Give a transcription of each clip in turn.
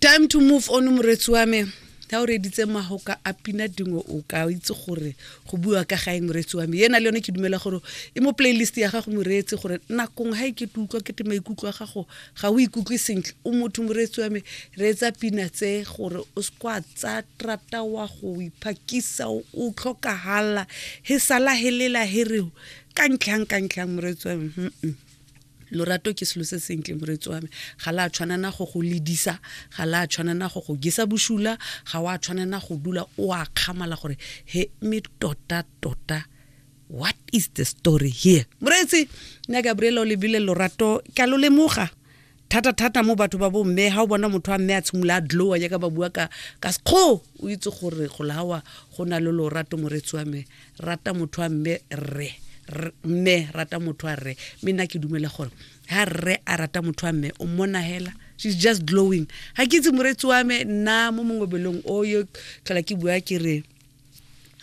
time to move on moretsi wa me ga o reditse magoka a pina dingwe o ka itse gore go bua ka gae moreetsi wa me ena le yone ke dumela gore e mo playlist ya gago moreetsi gore nakong ga e ke utlwa ke te maikutlo a gago ga o ikutlwe sentle o motho moreetsi wa me reetsa pina tse gore o sekwa tsa trata wa go iphakisa o tlhokagala he sala helela hereo ka ntlhang ka ntlhang moreetsi wa me lorato ke selo se sentle moretsi wa me ga la tshwanana go go ledisa ga la tshwanana go go gesa bosula ga wa tshwanana go dula o a kgamala gore he me tota tota what is the story here moreetsi nna gabriela o lebile lorato ka lo lemoga thata thata mo batho ba bomme ga o bona motho a mme a tshimolola a dlowa jaaka ba bua ka ka sekgo o itse gore go lawa go na le lorato moretsi wa me rata motho a mme rre mme rata motho a rre mme nna ke dumela gore ha rre a rata motho a mme o mmona hela she's just glowing ga ke itse moretsi wa me nna mo mongobelong o yo tlhola ke bua ke re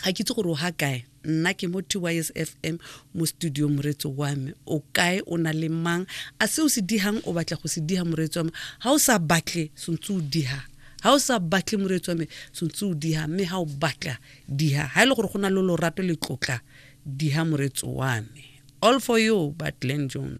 ga ke itse gore o ga kae nna ke mo tys fm mo studio moretso wa me o kae o na le mang a se o se dihang o batla go se diha moretso wa me ga o sa batle sentse o diha ga o sa batle moretso wa me sentse o diha mme ga o batla diha ga e le gore go na le lorato le tlotla diha moretso wa me all for you but glen jones